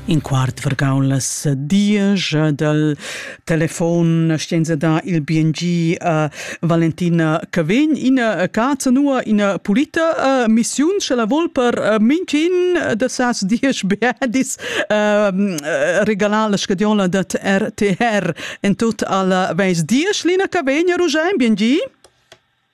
In quart vargau las diesch dal telefon scienza da il BNG uh, Valentina Cavegn ina cazza nua ina pulita uh, missiun sche la vol per uh, mincin da sas diesch beadis uh, regalar la scadiola dat RTR en tut alla veis diesch Lina Cavegn Rugein BNG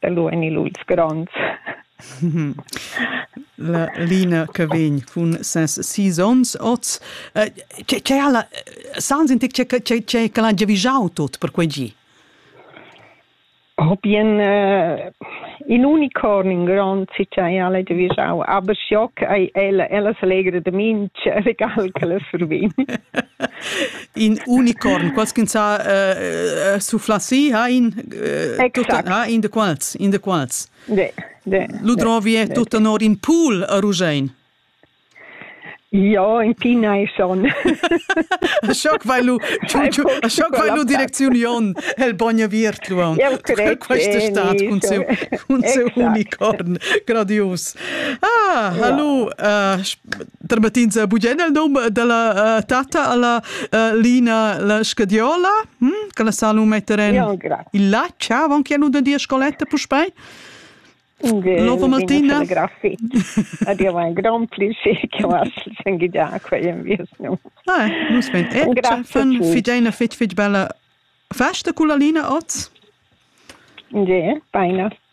da lu en il uits gronds. la Lina che vegn cun ses sis onns oz. Tge ha la sans in tec che l'ha giavischau tut per quei gi? Hobien uh, in unicorn in grond si che ha giavischau, aber schock ei ella ella selegre de minch regal che la survin. in unicorn, quals ch'ins ha uh, sufflà si, ha in, uh, tutta, ha in de quals, in de quals. De, de, Lu drovi è tutta nor in pool a Rugein. Ja, in Tina è schon. Schock vai lu, schock vai lu direcziun Jon, el bogna viert lu aun. Questa stat cun seu, cun seu unicorn, gradius. Ah, hallo, uh, Termettins a bugen il num dalla uh, tata alla uh, Lina la Scadiola, hm? che la sa lu metter en ja, il là, ciao, avon che nu da dir scoletta puspei. Lopo Martina. Adio, mein Gromplisi, che was sen gidia quei vies nu. Ah, nus ben. E fan fidena fit fit bella festa con la Lina oz. Ja, beina.